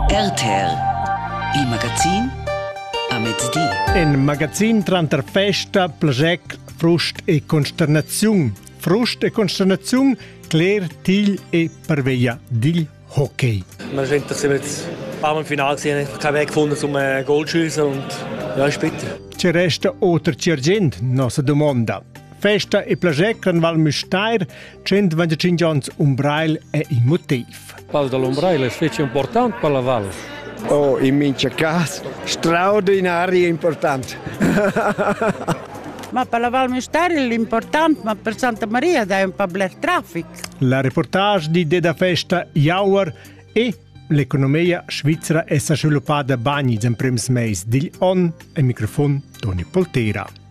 RTL Il magazin a mezdi. In magazin tranter festa, plasec, frust e consternaziun. Frust e consternaziun cler til e parveia digl hockey. Wir sind jetzt ein paar Mal im Finale gesehen, keinen Weg gefunden, um äh, Goal zu schießen und ja, ist bitter. Ci resta oter ci argint, nossa domanda. Festa e plasec an Val Müstair 125 onns Umbrail è il motiv. Pal dall'Umbrail è fece important per la val. Oh, in mincha cas, straordinario important. ma per la Val Mistari l'important, ma per Santa Maria è un po' black traffic. La reportage di Deda Festa Jauer e l'economia svizzera è sviluppada bagni in prems meis digl on e microfon Toni Poltera.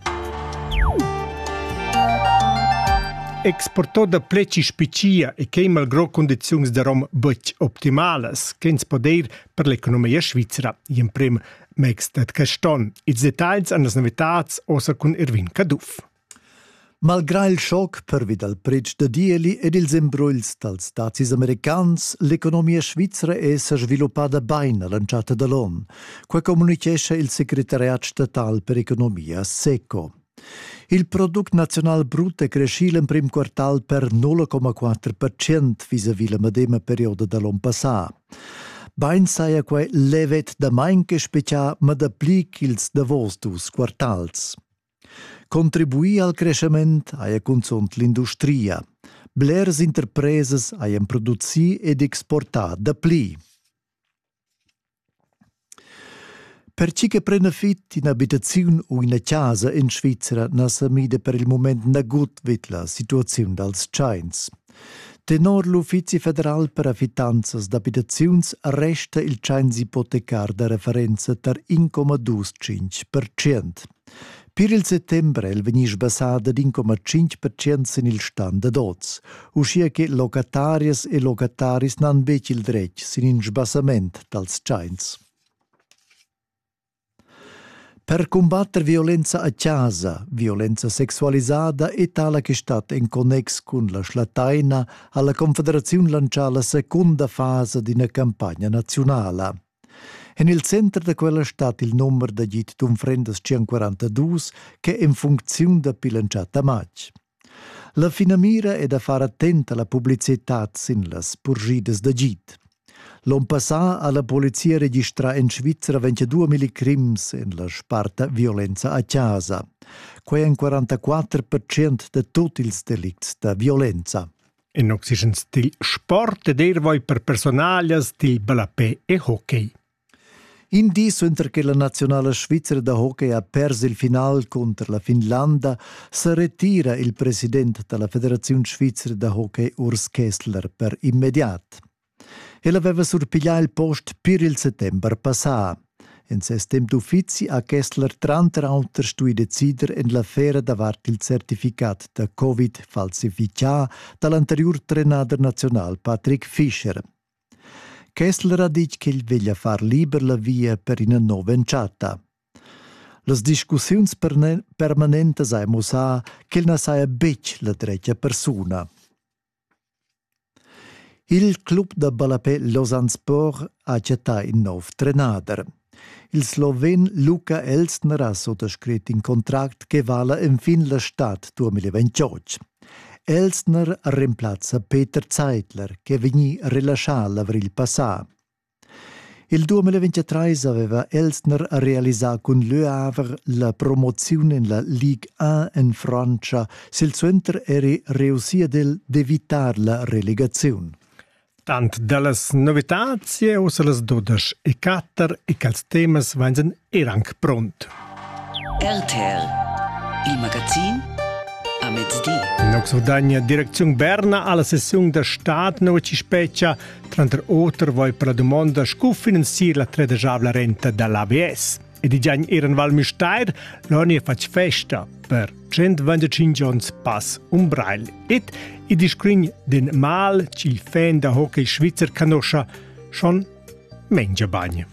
exportò da pleci spiccia e che malgro condiziuns da rom betg optimalas ch'ins podeir per l'economia svizra in prim megs dat caston. Ils detagls an las novitats osa cun Erwin Caduff. Malgrà il schoc pervi dal pretsch da dieli ed ils embruls dals dazis americans, l'economia svizra è sa sviluppada bain a l'entschatta da l'on. Quai communitgescha il secretariat statal per economia SECO. Il product nazional brut è crescì l'emprim quartal per 0,4% vis-à-vis la medema perioda da l'onn passà. Bain saja quai levet damain che specia ma dapli ch'ils davos dus quartals. Contribuì al crescement haja cunzunt l'industria. Blers interpresas hajan producì ed exportà dapli. Pertgi che prenda fit in'abitaziun u ina chasa en Svizra na sa mida per il mument nagut vid la situaziun dals tschains. Tenor l'Uffizi federal per affittanzas d'abitaziuns resta il tschains ipotecar da referenza tar 1,25%. Pir il settember è el vegnì sbassà dad in coma tschintg percent sin il stan dad oz, uschia che locatarias e locataris n'han betg il dretg sin in sbassament dals tschains. Per cumbatter violenza a chasa, violenza sexualisada e tala che stat en connex cun la schlattaina ha la Confederaziun lantschà la secunda fasa d'ina campagna naziunala. En il center da quella stat il numer d'agid d'unfrendas 142 che è en funcziun dapi l'entschatta matg. La finamira è da far attent a la publicitad sin las purgidas d'agid. L'on passà ha la polizia registrà en Svizzera 22.000 crims en la sparta violenza a casa. Quai èn 44% da tut ils delicts da violenza. En oxygen stil sport ed er voi per personalias dil ballapé e hockey. In di suenter che la nazionala svizra da hockey ha pers il final cunter la Finlanda sa retira il president dalla Federaziun svizra da hockey Urs Kessler per immediat. El aveva surpiglià il post pir il settember passà. In ses temp d'uffizi ha Kessler tranter auter stuì decider en l'affera davart il certificat da Covid falsifichà da l'anteriur trenader naziunal Patrick Fischer. Kessler ha ditg ch'el veglia far liber la via per ina nova entschatta. Las discussiuns permanentas hai mussà ch'el na saja betg la dretga persuna. Il club da ballapè Lausanne Sport ha chattà in nov trenader. Il sloven Luka Elstner ha suttascrit in contract che vala enfin la stad 2028. Elstner remplazza Peter Zeitler, che è vegnì relaschà l'avrigl passà. Il 2023 aveva Elsner realisà cun Leu Aver la promoziun en la Ligue 1 en Frantscha. Silsuenter eri reussì ad el d'evitar la relegaziun. Tant da las novitads uss las dudesch e quatter e quels temas vain sen er anc pront. RTL, il magazin a mezdi. In Oxordania direcziun Berna alla sessiun da stad nova ci speccia tranter oter voi per la domanda scu finanzier la tredajabla renta dall'ABS. E di giagn eran Val Müstair, l'oni fatg festa per 125 ons pass Umbrail et i discrin den mal ch'il fan da hockey svizzer canoscia schon mengia bagn.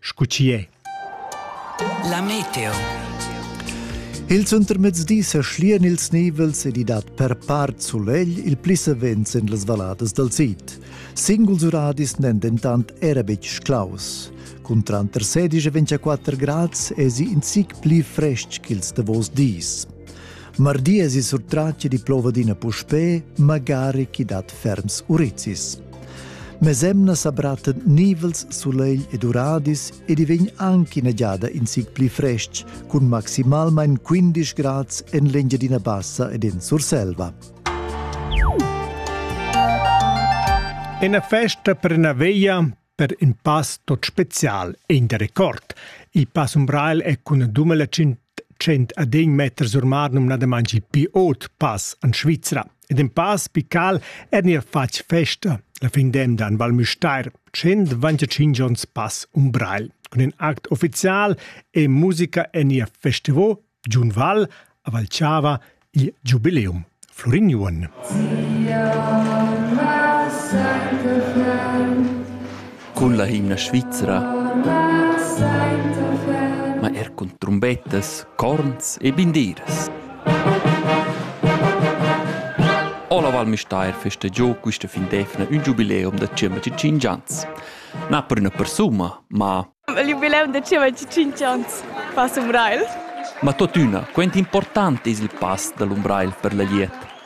scu chi è. La meteo. Il suntermezdi sa schlian ils nivels ed i dat per part sulegl il pli savens en las valladas dal sid. Singuls uradis n'èn dentant era betg claus. Cun tranter 16 e 24 grads èsi in zic pli frestg ch'ils davos dis. Mardi èsi surtratg di plova d'ina puspè, magari chi dat ferms urizis. Mesemna sa brattan nivels, sulegl ed uradis ed i vegn anche ina giada in zic pli frestg, cun maximalmain 15 grads en l'Engiadina Bassa ed en Surselva. Ina festa per una veglia per in pass tot spezial in der Rekord. Il pass Umbral è cun 2100 adegn meter sur mar numnadamain il più ot pass en Svizzera. ed in pa spical ed neir fatg festa la fin d'emda en Val Müstair, 125 ons pass um Breil, cun in act ufficial e musica en ihr festival Giun Val a Valchava il giubileum Florin Juon. Sia massa cun la himna svizra, ma er cun trumbettas, corns e bindiras. Ola Val Müstair festa giò quista fin d'efna un giubileum da 105 ans. Na per üna persuma, ma... Il giubileum da 105 ans pass Umbrail? Ma totüna, quant important es il pass da l'Umbrail per la liet?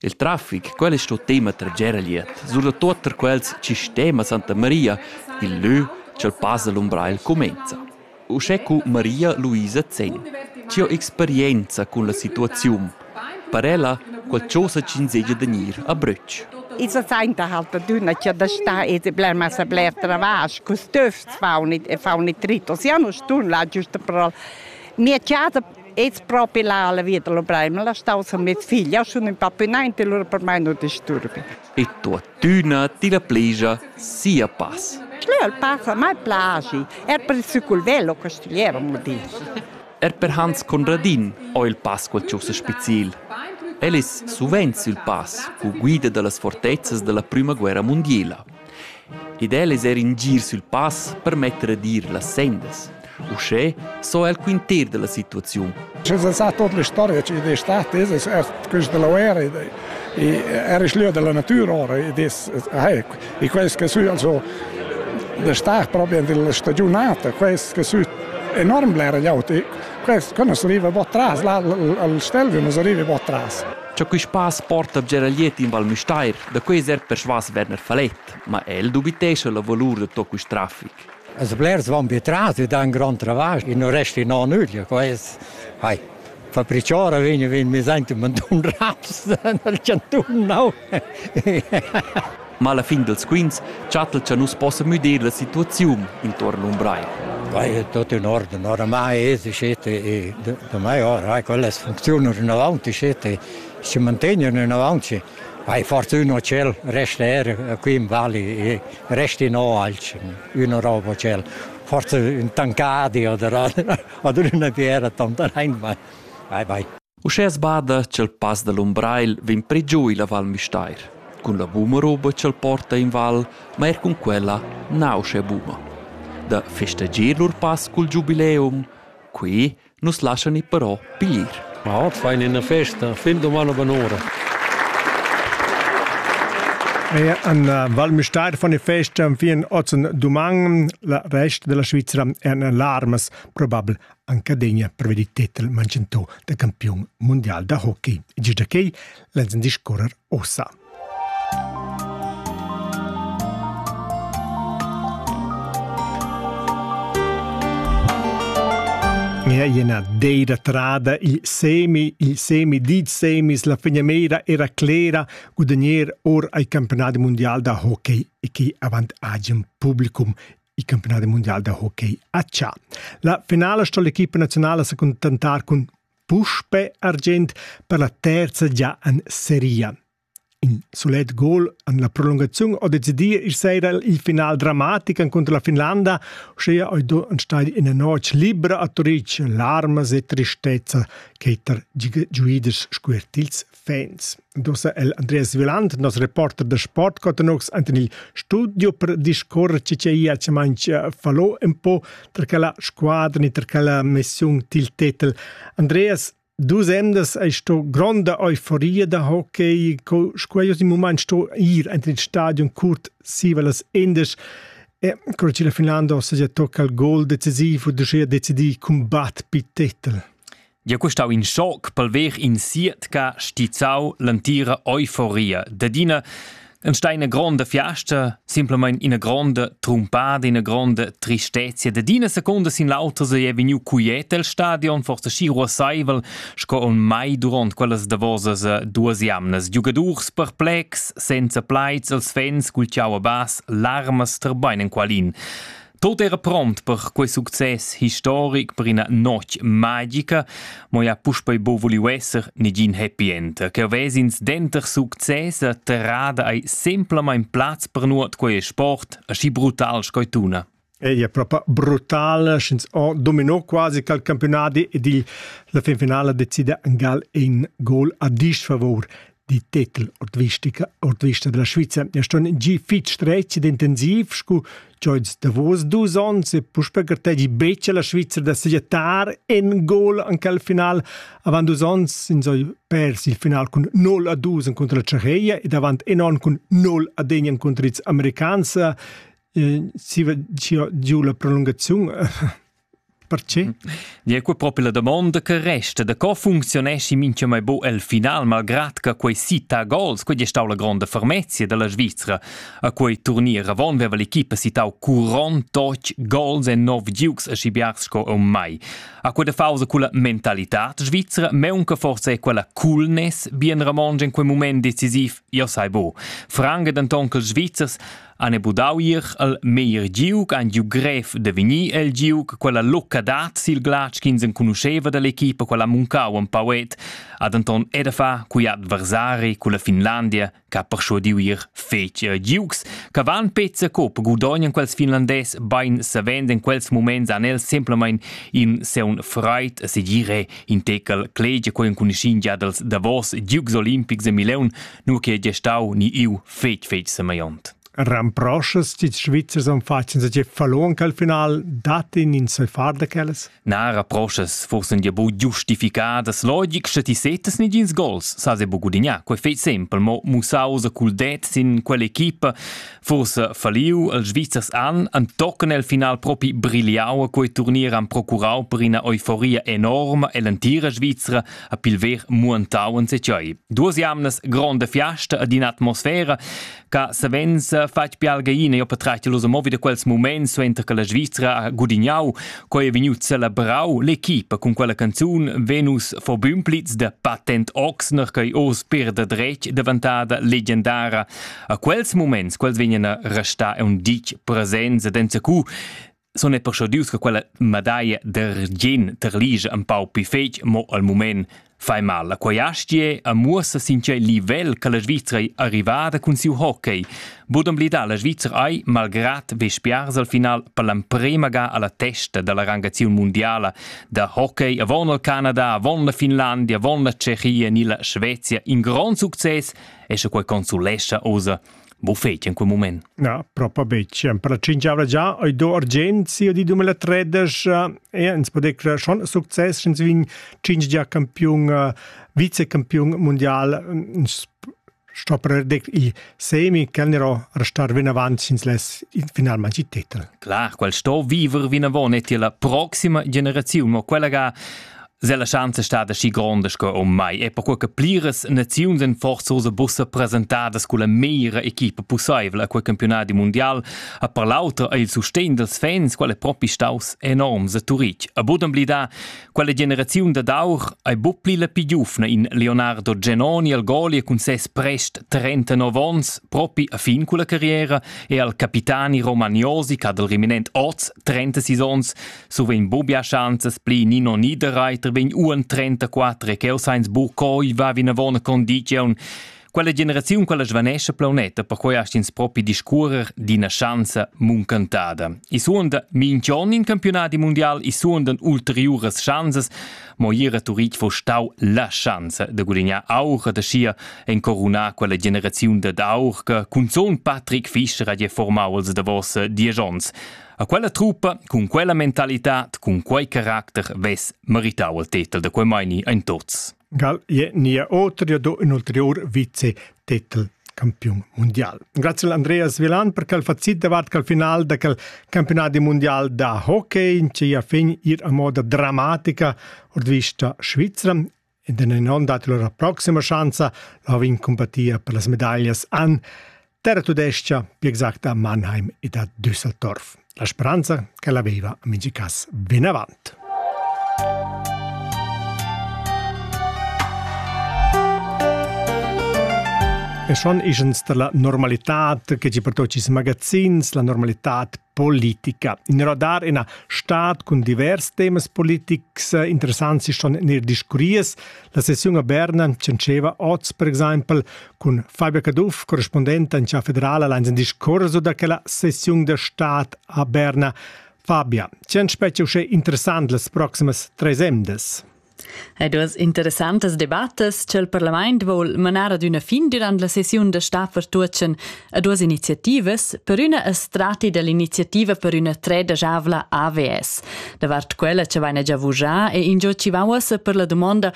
Il traffic, quel es sto tema trager a glieud, surdatot tar quels chi stema Santa Maria, il lö cha'l pass da l'Umbrail cumainza. Uschè cu Maria Luisa Zegn. Chia experienza cun la situaziun. Per ella qual chosa ch'insegia da gnir a brüch. I sa sainta halt da dunna chia da sta ete bler massa bler travasch, cus töfs faunit e faunit ritos. Ja nu stun là giusta per al mia chasa Es propi là la vita lo Bremen, la stau sun mia figlia, sun in pa pünaint e lura per mai nu disturbi. E tuottüna ti la plegia sia pass. Leu il pass a mai plagi, er per il cicul velo castigliero, mo di. Er per Hans Conradin ho il pass qualchosa speciel. El es suvenz il pass cu guida da las fortezzas da la prüma guerra mundiela. Ed el es eir in gir sül pass per metter ad ir las sendas. Uschè s'ho el quinter da la situaziun. Es è stata tutta l'istorgia ed è stata es er questa lauera e era il lieu della natura ora ed è e questo che su also da star proprio nella stagiunata questo che su enorm blera gliaut e questo quando si arriva un tras là al stelvio non si arriva un tras Ciò che spass porta a Geraliet in Val Müstair Da quei cert persvas Werner Falet, ma el dubitescha la valur da tot quest traffic. Els blers van be tras e dan grand travasch e non resti non nüglia, quest. Hai. Fabriciora vegn vegn mi senti man tun raps nel cantun no. Ma alla fin dels quints chattel cha nus possa müdir la situaziun intorno un brai. Vai, è tutto in ordine, oramai è si scete e da mai ora, quelle funzionano in avanti scete, si mantengono in avanti. Hai fortuna ch'el resta er qui in vali e resti no alch üna roba ch'el forsa ün tancadi o ad üna fiera tontanein mai. Vai, vai. Uschè sbada ch'el pass da l'Umbrail vegn pре giù illa Val Müstair. Cun la buma roba ch'el porta in val, ma er cun quella nauscha buma. Da festeggier lur pass cul giubileum, qui nus laschan ir però piglir. Ma ot fain ina festa, fin doman o bonora. Mehr an Val Müstair von der Fest fin ozen duman la rest della Svizzera en larmas probabel anche degna per vedi titel mancentò da campion mondial da hockey. E già che l'enzin discorrer ossa. Mia ina deira trada il semi, il semi dit semis, la fegnemera era clera gudagner or ai campionat mondial da hockey e chi avant agem publicum il campionat mondial da hockey a Cia. La finale sto l'equipa nazionale si contentar cun Puspe argient per la terza gia en seria. In sulet gol en la prolungaziun ha decidì ir sera il final dramatic cunter la Finlanda, uschia hai do enstagl ina notg libra a Turic larmas e tristezza ch'ei tar giuiders scuertils Fans. Dosa el Andreas Viland, nos reporter da sport, cotanox ant in il studio per discorrer ci ce ia ce manch eh, fallo un po tra la squadra ni tra la missiun til titel. Andreas, Dus emdas hai sto gronda euforia da hockey, co squaios in moment sto ir ant in stadion curt siva las endes. E cor ci la Finlanda ossa ja tocca il gol decisivo, du schea decidi cumbat pi titel. Dia custau in schoc pel ver in sietca stizzau l'antira euforia d'adina en steina gronda fiasta simpelmain ina gronda trumpada ina gronda tristezia d'adina secunda sin l'autra se è vegniu cuiet el stadion forse schi ruassaivel sco on mai durant quellas davosas duas jamnas giugadurs perplex senza plaids els fans cul ciau a bas larmas terbein en qualin Tot era pront per quei success historic per ina notg magica, mo ja puspei bo voliu esser negin happy end, che vesins denter success e terrada ei semplamein plaz per nuot quei sport, aschi brutal sco tuna. Ei è proprio brutale, sch'ins ho dominò quasi cal campionati ed il, la finfinala decide Gal in gol a disfavor die Titel ord vista della Sviza ja ston gi fitg stretg ed intensiv scu Joyce Davos dus ons e puspe gartegi becce la Sviza da segettar en gol anche al final avant dus ons in soy pers il final cun 0 a 2 contro la Tschecheia ed avant en on cun 0 a degnan contro ils Americans eh, si va giu la prolungazione Perche? Nia, qua propi la domonda che resta, da co funcziuneschi mincha mai bo el final, malgrad che quei sita gols, quei è stau la gronda fermezia della Svizzera. A quei turnier avon veva l'equipa citau 48 gols e 9 giugs a scibiar sco un mai. A quella fausa culla mentalità svizzera, meunca forse è quella coolness, bien Ramon in quei moment decisiv, io sai bo. Franga denton che els Svizzers han budau ir al meglier giug, han giu grev de vegnir el giug, quella locca dat sil glatsch ch'ins enconuscheva dall'equipa, quella muncau en pauet, ha denton era fa cui adversari culla Finlandia che ha persuadiu ir fetg eh, giugs, che van pezza cop gudognan quels finlandés bein savend in quels moments han els semplamein in seun freit segire in tecal clegia quei enconuschin gia dels davos giugs olimpics de Mileun nu che gie stau ni iu fetg fetg semaiont. Ramproschas ti Svizzers han fatg in seg fallon che al final dat in in sai far da quellas? Na, ramproschas forse un bu giustificadas logic sche ti setas nigins gols, sa se bu gudigna, quei fei sempel, mo musau sa cul det sin quell'equipa, forse falliu els Svizzers an, an tocken el final propi brigliau a quei turnier han procurau per ina euforia enorma ell'antira Svizzera, a pilver muantau en secei. Duas jamnas gronda fiasta ad in atmosfera ca savens fatg pialgaina jo patratg los movi da quels moments suenter che la Svizzera ha gudignau coi è vegniu celebrau l'equipa cun quella canzun Venus for Bümplitz de Patent Oxner coi oz per da dretg davantada legendara. A quels moments quels vegnan a restar un dic presenza denza cu sun ei perschudius che quella medaglia d'argient terlige un pau pli fetg, mo al mument fai mal. La quaiastie a muossa sin tgei livel che la Svizra è arrivada cun siu hockey. Bod omblidà la Svizra ei, malgrad vespiars al final, per l'emprema ga alla testa dalla rangaziun mondiala da hockey, avon il Canada, avon la Finlandia, avon la Tschechia ni la Svezia, in grond success e sche quei consolescha osa Bo feti in quel moment? Na, propo betg. Per cingiavla già oi do Argenzia di 2013 e ins pode crer schon success sch'ins vin cinc gia campiun vicecampiun mundial sto per dec i semi che nero restar vin avant sins les finalmente il titel. Klar, quel sto viver vin avon e la proxima generazione, mo quella ga Sella chance è stata schi gronda sco um mai e perquai che pliras naziuns en forza usa bussa presentadas con la meira equipa pussaivel a quel campionati mondial ha per l'auter er il sustegn dels fans qual è propi staus enorms a Turitg. A budem blida, quella generaziun da d'aur hai bu pli la più giufna in Leonardo Genoni al Golia cun ses prest 39 ons propi a fin con la carriera e al capitani Romagnosi che ha del reminent oz 36 ons Suvent bubbia schanzas pli nino niederreiter vegn uon 34 e cheu sainz buc coi va vinavon a condiziun. Quella generaziun quella svanescha plaunetta, perquei hast ins propi discurer d'ina schanza muncantada. I suonda minch'on in campionati mundial, i suondan ulteriuras schanzas, mo ira Turitg vo stau la schanza de gudignar aura de schia en corunar quella generaziun dad aur che cunzon Patrick Fischer ha formau als davos diesch ons. A quella truppa, cun quella mentalitad, cun quei caracter vess meritau il tetel da quei meini ein tots. Gal je nia otrio do in ulterior vice-tetel campiun mundial. Grazie Andreas Vilan per quel facit davat quel final da quel campionat mondial da hockey in cia fin ir a moda dramatica ord vista Svizzera In den onn dat lura proxima schanza la vin compatia per las medaglias an Terra Tudescia, più exacta a Mannheim ed a Düsseldorf. La speranza che l'aveva a Mingicas ben avant. E schon ischens da la normalità che ci pertocis magazins, la normalità politica. In radar ina stat cun divers temas politics eh, interessanti schon nel discurries. La sessiun a Berna cencheva oz, per exempel, con Fabio Caduff, corrispondente in città federale, allein in discorso da quella sessiun de stat a Berna. Fabia, c'è specie uscè interessant las proximas tres emdes? Ed duas interessantas debattas ch'el parlament vol manar ad üna fin dürant la sessiun da stab Vertuotschen a duas iniziativas. Per üna es strati dell'iniziativa per üna treda javla AVS. Davart quella cha vaina già vujà e ingio chi va uossa per la dumonda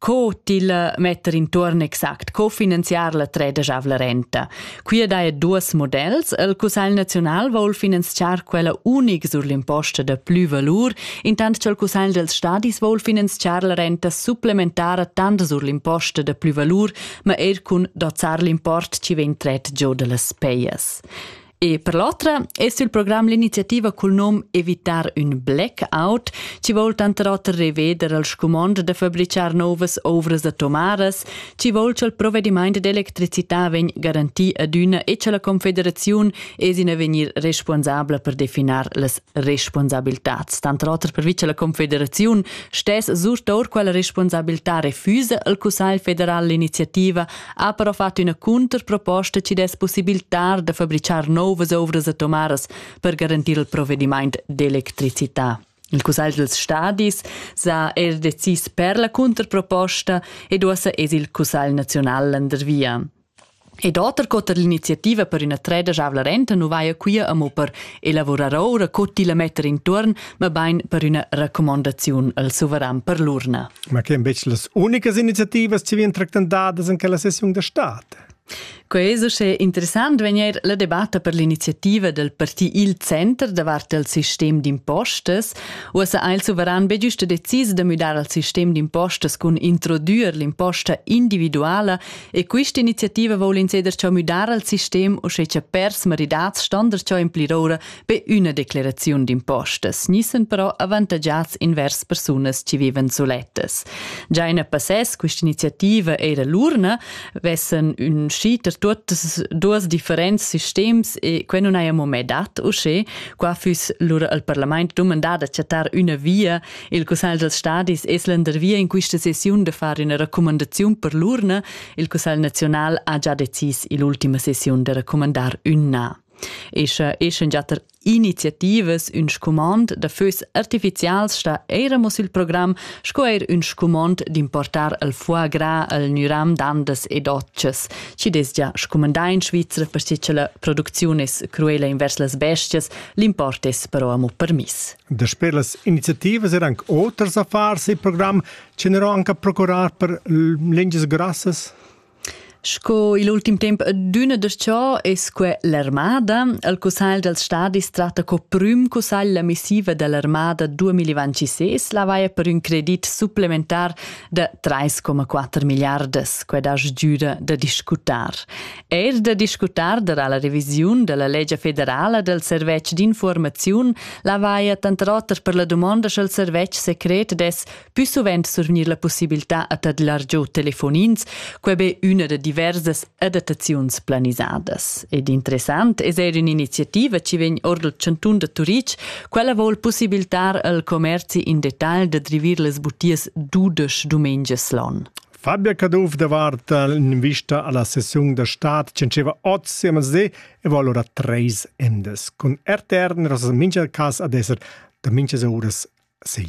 co til metter intuorn exact, co finanziar la treda javla renta. Qui dae duos modells, il Cussagl Naziunal voul finanziar quella unic sur l'imposta da plü valur, intant ch'il Cussagl dels Stadis voul finanziar la renta supplementara tant sur l'imposta da plü valur, ma eir cun dozzar l'import chi vegn tret giò da las peias. E per l'otra es il program l'iniziativa cul nom Evitar un blackout, chi voul tanter oter reveder il scumond da fabricar novas ovras atomaras, Chi vol cha'l provedimaint d'electricità vegn garantì adüna e cha la Confederaziun es in avegnir responsabla per definar las responsabiltats. Tanter oter pervi cha la Confederaziun stess surtour quella responsabiltà refusa al Cussagl federal l'iniziativa, ha però fat üna cunterproposta chi dess possibiltar da fabrichar nouvas ouvras atomaras per garantir il provedimaint d'electricità. Il cussagl dels stadis sa er decis per la cunterproposta ed uossa es il cussagl nazional landervia. Ed oter cot er l'iniziativa per üna treda javla renta nu vaja quia amo per elavurar oura co tilla metter intuorn, ma bain per üna raccomandaziun al suveran per l'urna. Ma che bec las unicas iniziativas ci vien tractandadas in quella sessiun da state? Quei es uschè interessant vegnir la debatta per l'iniziativa del parti Il Center davart il sistem d'impostas. Uossa ha il suveran be giusta decis da müdar al sistem d'impostas cun introdüer l'imposta individuala e quista iniziativa voul ins eder ciò müdar al sistem o sche cha pers maridats stander ciò implirora Be üna decleraziun d'impostas gnissen però avantagiats invers persunas chi vivan sulettas. Già in passès quist'iniziativa eira l'urna, vessen ün schiter tuottas duos differents sistems e que nun haja mo mê dat uschè, qua füss lura al parlament dumandà da chattar üna via. Il Cussagl dels stadis es landervia in quista sessiun da far üna racumandaziun per l'urna. Il Cussagl naziunal ha già decis ill'ultima sessiun da racumandar ünna. E sche eschen giatter iniziativas ün scumond da fös artificials sta eira mo sül program sco eir ün scumond d'importar il foie gras al Nyram d'andas e dotschas. Chi dess già scumandà in Svizra per che la producziun es cruela invers las bestias, l'import es però amo permiss. Dasper las iniziativas er anche oters affars e programm che n'ero anche procurar per lingias grassas? Sco il ultim temp adüna das-cho es que l'armada. Il cussagl dals stadis tratta co prüm cussagl la missiva da l'armada 2026, la vaia per ün credit supplementar da 3,4 miliardas. Que das giüda da discutar. Eir da discutar darà la revisiun da la legia federala dal serveç d'infuormaziun la vaia tanter oter per la dumonda sch'el serveç secret dess Pü suvent surgnir la pussibiltà a tadlar giò telefonins, quai be üna da diversas adattaziuns planisadas. Ed interessant es eir ün'iniziativa chi vegn or dal chantun da Turitg. Quella voul pussibiltar al commerzi in detagl da drivir las butias dudesch dumengias l'on. Fabia Caduff davart l'invista alla sessiun da stad diceva oz a Mazé e va allora treis endes. Con RTR nella mincha cas ad esser da minchas uras sei.